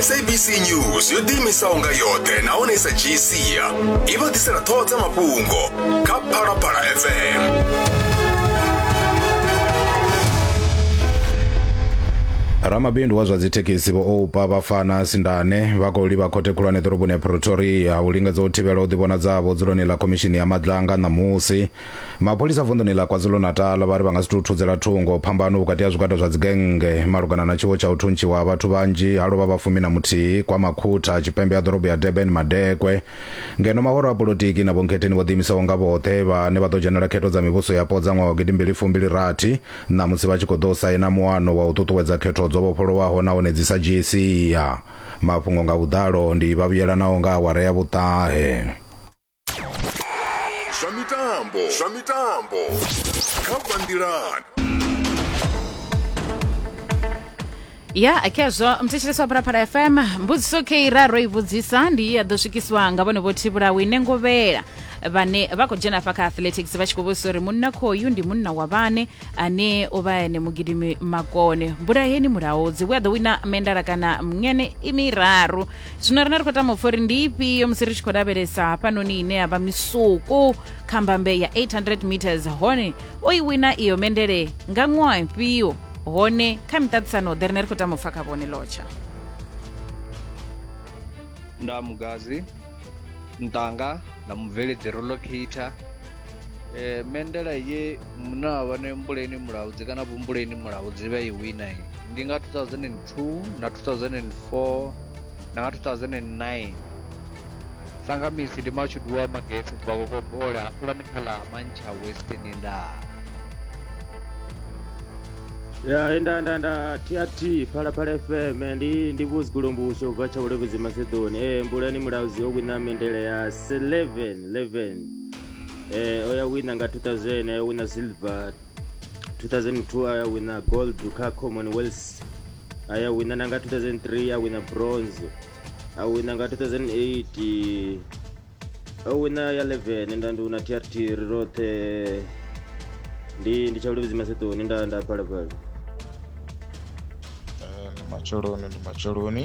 sabc news yo ḓiimisaho nga yoṱhe nahone sa dzhii sia i vha ḓisela ṱhoho dza mafhungo kha phalaphala fm ramabindu wa zwa dzithekhisi vho oupa vhafana sindane vha khou livha khothe khulwane ḓoroboni ya pretoria u lingedza u thivhela u ḓivhonadzavho dzuloni ḽa khomishini ya madlanga ṋamusi mapholisa vunḓuni ḽa kwazulu-natal vha ri vha nga si tou thudzela thungo phambano vhukati ha zwigwada zwa dzigennge malugana na tshiwo tsha u thuntshiwa ha vhathu vhanzhi ha lovha vha fumi na muthihi kwa makhutha tshipembe ha ḓorobo ya durban madekwe ngeno mahoro a polotiki na vhonkhetheni vho ḓiimisaho nga vhoṱhe vhane vha ḓo dzhenela khetho dza mivhuso yapo dza ṅwaha wa gidimbili fumbili rathi ṋamusi vha tshi khou ḓo saina muano wa u ṱuṱuwedza khetho dzo vhofholowaho nahone dzi sa dzhii sia mafhungo nga vhuḓalo ndi vhavhuyelanaho nga awara ya vhuṱahe zwa mitambo zwa mitambo kha banngilani ya khezwo mthetshelesi wa phalaphala fm mbudziso kei ra ro i vhudzisa ndi i ya ḓo swikiswa nga vhone vho thivhulaho ine ngovhela vhane vha khou dzhena afha kha athletics vha tshi khou vhudzisa uri munna khoyu ndi munna wa vhane ane o vha ene mugidimi makone mbulaheni mulaodzi we a ḓo wina mendala kana mngene i miraru zwino rine ri khou tama upfa uri ndi ifhio musi ri tshi khou lavhelesa hafhanoni ine ya vha misuku kha mbambe ya 800 meters hone o i wina iyo mendele nga ṅwaha ifhio hone kha miṱaṱisano ḓe rine ri khou tama upfa kha vhone lotsha nda mugazi ntanga nda mubveledzi rolocator Eh, mendela ye mune wa vha ne mbuleni mulaudzi kana vhumbuleni mulaudzi vha i wina ye ndi nga 2002 na 2004 na nga 2009 sanga misi ndi mashudu wa magetsi bva kokobola hafulani kha ḽa mantsha western ndaa ya nda nda nda tht phalaphala fm ndi ndi vhuzigulombuso ubva tsha vhulevhedzi masedoni e mbulani mulaudzi o wina mendele ya 11 11 eh, oyawina nga 2000 ayawina silver 2002 ayawina gold kha commonwealth ayawina nanga 2003 awina bronze awina nga 2008 awina ya 11 nda ndi una trt roṱhe ndi ndi tsha ulivhidzi masetoni nda nda phalaphala eh, ndi matsheloni ndi matsheloni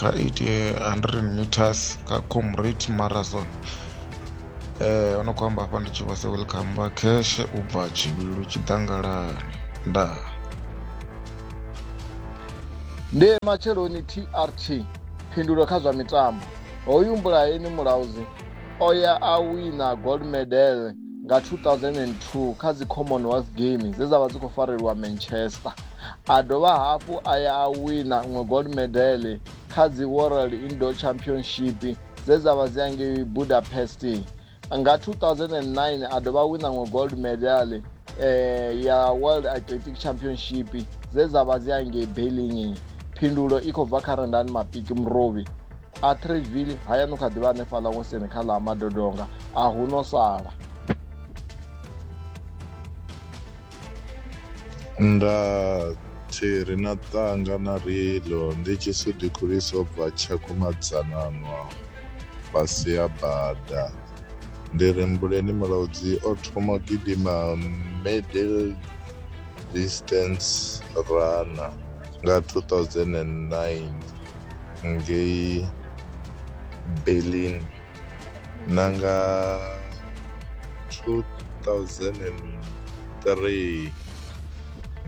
kha 800 meters kha comrade marathon eh ono khou amba hafha ndi tshi vhasa welcome vha cash u bva tshivhilu tshiḓangalani ndaa ndi matsheloni trt phindulo kha zwa mitambo hoyu mbulaeni mulauzi o ya a wina gold medal nga 2002 kha dzi commonwealth games dze dza vha dzi khou farelwa manchester A dovha hafhu a ya a wina ṅwe gold medal kha dzi World Indoor Championship dze dza vha dzi angei Budapest. Nga 2009 a dovha a wina ṅwe gold medal eh, ya World Athletic Championship dze dza vha dzi angei Berlin. Phindulo i khou bva kha Rendani Mapiki Murovhi. Atteridgeville hayani kha ḓivha hanefhaḽa ngoseni kha ḽa madodonga a hu no sala Nda tshi ri na ṱanga na rilo ndi tshi si dikhulisa u bva tshakumadzananwa fhasi ya bada ndi ri mbuleni mulaudzi o thoma gidima middle distance runner nga 2009 ngei berlin na nga 2003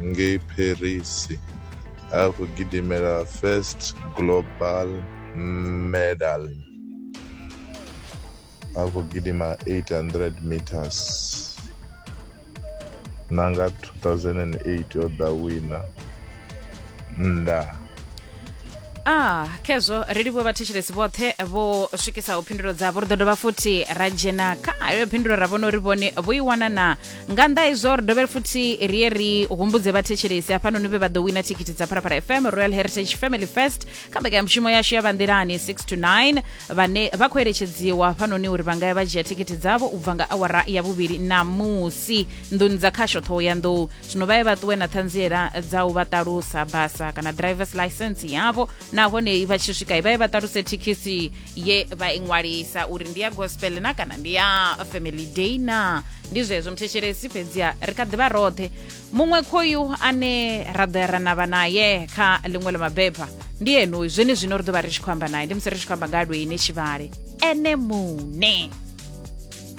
ngei paris a khou gidimela first global medal a khou gidima 800 meters na nga 2008 o ḓa wina nda ah khezwo ri livhuwe vhathetshelesi vhoṱhe vho swikisaho phindulo dzavho ri ḓo dovha futhi ra dzhena kha ayo phindulo ra vhona uri vhone vho i wana na nga nnḓa izwo ri dovhe futhi ri ye ri humbudze vhathetshelesi hafhanoni vhe vha ḓo wina thikhithi dza pharapara fm royal heritage family first kha mbekanyamushumo yashu ya vanḓilani 6 to 9 vhane vha khou eletshedziwa hafhanoni uri vha nga ya vha dzhia thikhithi dzavho u bva nga awara ya vhuvhili ṋamusi nḓuni dza khasho ṱhoho ya nḓou zwino vha ye vha ṱuwe na ṱhanziela dza u vha ṱalusa basa kana drivers license yavho nahone vha tshi swika vha ye vha ṱaluse thekhisi ye vha i ṅwalisa uri ndi ya gospel na kana ndi ya family day na ndi zwezwo mthetshelesi fhedziha ri kha ḓivha roṱhe muṅwe khoyu ane ra ḓo ya ra navha naye kha ḽiṅwe ḽa mabeba ndi enuyu zwene zwino ri ḓo vha ri tshi khou amba naye ndi musi ri tshi khou amba nga ha lweine tshivhale ene muṋe